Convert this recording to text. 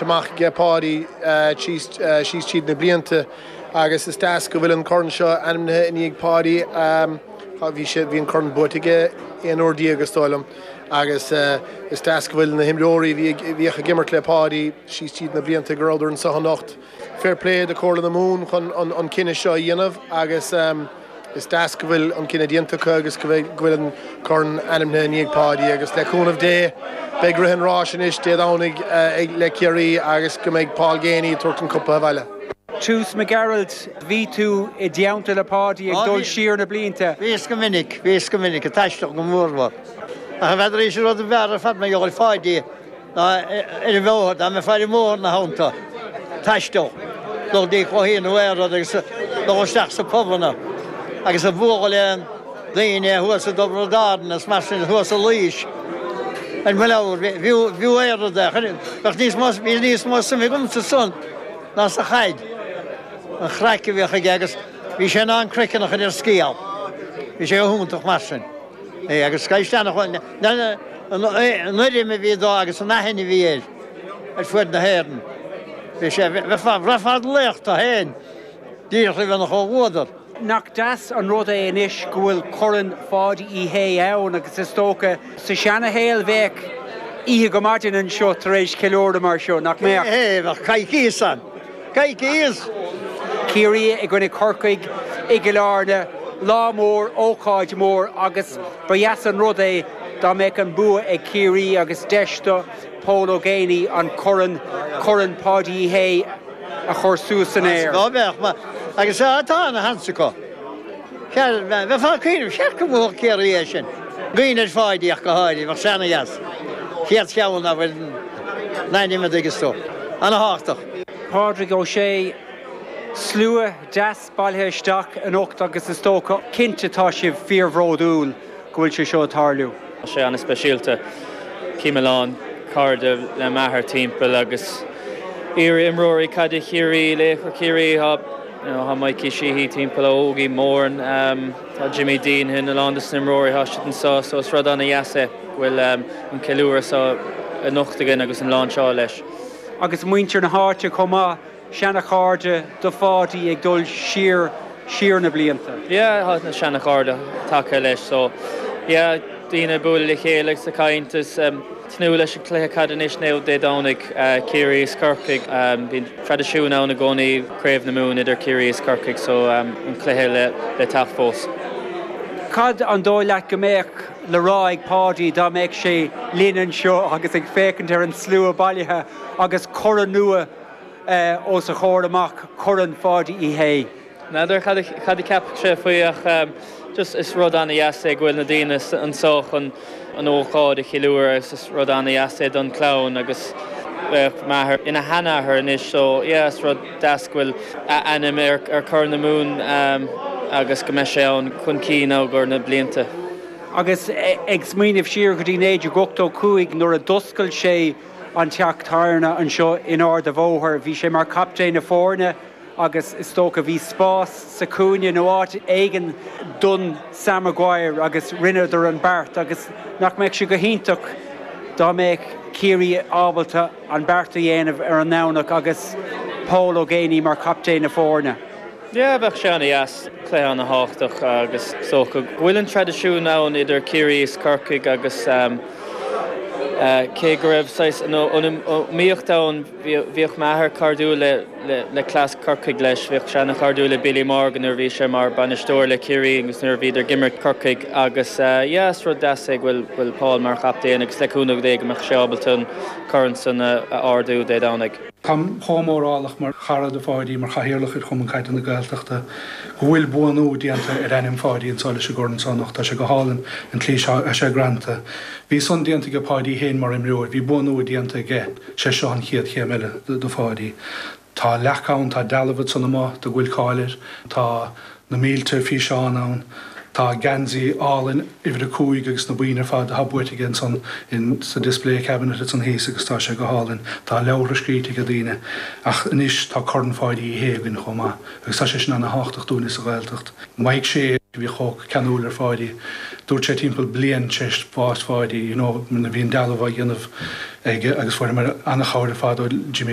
amach ag Páidí síos tríd na blianta agus is deas go bhfuil an corn seo ainmnithe i ndiaidh Páidí. Bhí an corn buaite aige 11 uair is dóigh liom agus is deas go bhfuil na himreoirí a bhíodh ag imirt le Páidí síos tríd na blianta go rabhadar anseo anocht. Fair play do Comhairle na Mumhan chun an cinne seo a dhéanamh agus. Is deas go bhfuil an cinne déanta acu agus go bhfuil an corn ainmnithe i ndiaidh Páidí agus, le cúnamh Dé, beidh rith an ráis anois Dé Domhnaigh le Ciarraí agus go mbeidh Paul Geaney ag tabhairt an cupa abhaile. Seamus Mac Gearailt, bhí tú i dteannta le Páidí ag dul siar na blianta. Bhíos go minic, bhíos go minic, ag taisteal go mór mhór. Ach n'fheadar, is é an rud a b'fhearr ar fad ná comhluadar Pháidí. Nó ar an mbóthar, dá mbeifeá ar an mbóthar ina theannta, taisteal, dul dtí cluichí nó aon rud agus dul isteach sa pubanna agus ag bualadh le daoine thuas i dTobbar na Darna is mar sin, thuas i Laois, ar mo leabhar, bhí, bhí ana-rud é, bheadh níos mó, bhí níos mó suim agamsa san ná sa chaid, an chraic a bhíodh aige agus bhí sé in ann croiceann a chur ar scéal, bhí sé go hiontach mar sin. é agus cás eile ná an urraim a bhí dó agus an aithne a bhí air ar fuaid na hÉireann. Bhí sé ar fad ina laoch dó féin, díreach le bheith ina chomhluadar. Nach deas an rud é anois go bhfuil Corn Pháidí Uí Shé ann agus is dócha sa seana-shaol bheadh oíche go maidin anseo tar éis ceiliúradh mar seo, nach mbeadh? Bheadh coicíos ann. Ciarraí i gcoinne Corcaigh i gCill Airne, lá mór, ócáid mór agus ba dheas an rud é dá mbeadh an bua ag Ciarraí agus deis do Pól Ó Géibheannaigh an corn, Corn Páidí Uí Shé, a chur suas san aer. Ach ná beadh, mar is é atá ina chaptaen acu. Seadh, bheifeá ag cuimhneamh, cheart go mbuafadh Ciarraí é sin, i gcomhair Pháidí ach go háirithe, bheadh sé ana-dheas, an chéad cheann dá bhfuil a ainm air, an dtuigeann tú. Ana-thábhachtach. Pádraig Ó Sé, Slua deas bailithe isteach anocht agus is dócha, cinnte, tá sibh fíorbhródúil go bhfuil sé seo ag tarlú. Tá sé ana-speisialta. Chím a lán cairde le m'athair timpeall agus iar-imreoirí caide Chiarraí, laochra Chiarraí. Tá Mikey Sheehy timpeall, Ógie Moran, tá Jimmy Deenihan, a lán dos na himreoirí tá siad anseo, so is rud an-deas é go bhfuil an ceiliúradh seo anocht againn agus an láinseáil leis. Agus muintir na háite chomh maith, seana-chairde do Pháidí ag dul siar, siar na blianta. Yeah, tá na seana-chairde tagtha leis, so yeah, daoine ag bualadh le chéile agus ag caint is. tnúth leis an gcluiche caide anois, now Dé Domhnaigh, Ciarraí is Corcaigh. Bíonn traidisiún ann i gcónaí, Craobh na Mumhan idir Ciarraí is Corcaigh so an cluiche le teacht fós. Cad an dóigh leat go mbeadh le rá ag Páidí dá mbeadh sé linn anseo agus ag féachaint ar an slua bailithe agus corn nua os a chomhair amach, Corn Pháidí Uí Shé? N'fheadar cad a cheap sé faoi ach just is rud ana dheas é go bhfuil na daoine anso chun an ócáid a cheiliúradh agus is rud ana dheas é don chlann agus bheadh m'athair ina sheanathair anois so yeah is rud deas go bhfuil a ainm ar Corn na Mumhan agus go mbeidh sé ann chun cinn i gcomhair na blianta. Agus ag smaoineamh siar go dtí 1985 nuair a d'oscail sé an teach tábhairne anseo in Ard a' Bhóthair, bhí sé mar captaen na foirne, agus is dócha bhí spás sa chúinne nó áit éigin don Sam Maguire agus rinneadar an beart agus nach mbeadh sé go hiontach dá mbeadh Ciarraí ábalta an beart a dhéanamh ar an nDomhnach agus Pól Ó Géibheannaigh mar captaen na foirne. Yeah, bheadh sé ana dheas, cluiche ana thábhachtach agus is dócha go bhfuil an traidisiún ann idir Ciarraí is Corcaigh agus cé go raibh saghas an iomaíocht ann, Bhíodh m'athair cairdiúil le cleas Corcaigh leis. Bhíodh sé ana chairdiúil le Billy Morgan nuair a bhí sé mar bainisteoir le Ciarraí agus nuair a bhíodar ag imirt Corcaigh agus yeah is rud deas é go bhfuil Paul mar chaptaen agus le cúnamh Dé go mbeadh sé ábalta an corn san a ardú Dé Domhnaigh. Táim chomh mórálach mar chara do Pháidí, mar chathaoirleach ar Chumann Caide na Gaeltachta, go bhfuil buanú déanta ar ainm Pháidí anseo leis an gcorn san anocht. Tá sé go hálainn, an tslí atá sé greanta. Bhí san déanta aige Páidí fhéin mar imreoir, bhí buanú déanta aige. Sé seo an chéad chéim eile do Pháidí. Tá leac ann, tá dealbh ansan amuigh de go bhfuil cáil air, tá na mílte físeán ann, tá an geansaí álainn uimhir a cúig agus na boinn ar fad atá buaite aige ansan in sa display cabinet ansan thíos agus tá sé go hálainn. Tá leabhartha scríte aige daoine. Ach anois tá Corn Pháidí Uí Shé againn chomh maith agus tá sé sin ana thábhachtach dúinne sa Ghaeltacht. Mar sé a bhí chomh ceanúil ar Pháidí. Dúirt sé timpeall bliain tar éis bhás Pháidí, you know, bhí an dealbh á dhéanamh aige agus fuair mé an-chabhair ar fad ó Jimmy.